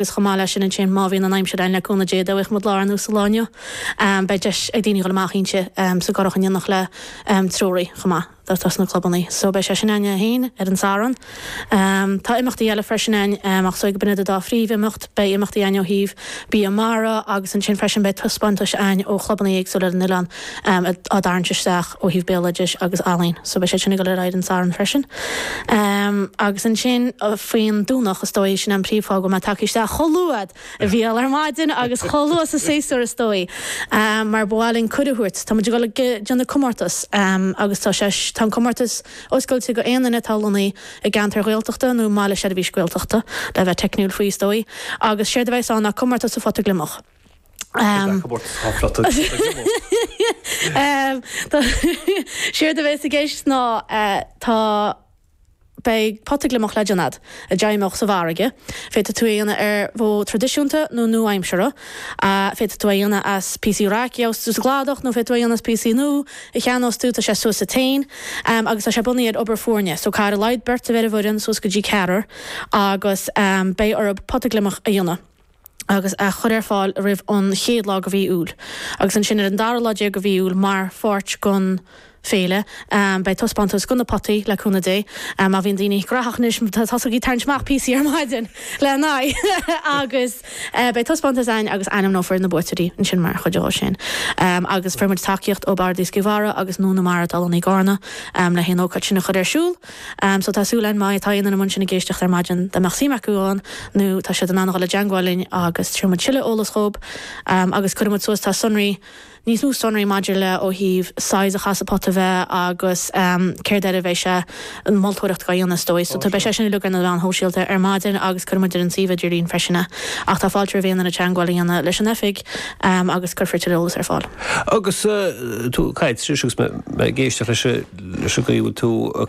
Agus chomh maith leis sin ansin má bhíonn an aimsir ann le cúnamh Dé dá bhfaigheadh muid lá ar nós an lá inniu beidh deis ag daoine dhul amach inti sa gcurach in éineacht le treoraí chomh maith atá sna clubanna so beidh sé sin ann é féin ar an Satharn. Tá imeachtaí eile freisin ann ach is dóigh go b'in iad an dá phríomh imeacht. Beidh imeachtaí ann ó thaobh bia mara agus ansin freisin beidh taispeántais ann ó chlubanna éagsúla ar an oileán. am á dtarraingt isteach ó thaobh béaloidis agus ealaín so beidh siad sin ag dul ar aghaidh don Satharn freisin am agus ansin faoin Domhnach is dóigh sin é an príomh fáth go bhfuil muid tagtha isteach chomh luath bhuel ar maidin agus chomh luath sa séasúr is dóigh am mar ba mhaith linn cuireadh thabhairt tá muid ag dul ag déanamh comórtas am agus tá sé tá an comórtas oscailte do aon duine atá lonnaithe i gceantar Gaeltachta nó i mbaile seirbhís Gaeltachta le bheith teicniúil faoi is dóigh agus séard a bheidhs ann ná comórtas an phota gliomach. Tá comórtas an phota gliomach. Séard a bheas i gceist ná tá, beidh pota gliomach le déanamh agat a d'fheidhmeodh sa bhfarraige. Féadfaidh tú é a dhéanamh ar mhodh traidisiúnta nó nua-aimseartha. Féadfaidh tú é a dhéanamh as píosaí raic a gheobhas tú sa gcladach nó féadfaidh tú é a dhéanamh as píosaí nua a cheannós tú. Tá sé suas agat féin agus tá sé bunaithe ar obair foirne. So caithfidh ar a laghad beirt a bheith ar an bhfoireann suas go dtí ceathrar agus beidh orthu pota gliomach a dhéanamh. agus a chur ar fáil roimh an chéad lá de mhí Iúil agus ansin ar an dara lá déag de mhí Iúil mar pháirt den féile. Beidh taispeántas de na potaí, le cúnamh Dé. Má bhíonn daoine graitheach anois, tosaigh ag tarraingt amach píosaí ar maidin lena aghaidh agus beidh taispeántas againn agus ainmneofar na buaiteoirí ansin mar chuid dhó sin. Agus fuair muid tacaíocht ó Bhord Iascaigh Mhara agus Nua na Mara atá lonnaithe i gCarna le haghaidh an ócáid sin a chur ar siúl. So tá súil againn má tá aon duine ansin ag éisteacht ar maidin dá mbeadh suim acu ann nó tá siad in ann a dhul i dteangmháil linn agus tabharfaidh muid tuilleadh eolas dhób agus cuirfidh muid suas tá sonraí, níos mó sonraí maidir le ó thaobh size a chaithfeas an pota a bheith agus céard air a bheidhs an mholtóireacht dhá dhéanamh is dóigh. So tá beidh sé sin uilig ar na meáin shóisialta ar maidin agus cuirfidh muid ar an suíomh idirlíon freisin é. Ach tá fáilte roimh aon duine teangmháil a dhéanamh leis an oifig agus cuirfear tuilleadh eolas ar fáil. Agus tú caite anois agus mé ag éisteacht leis an gcaoi a bhfuil tú ag.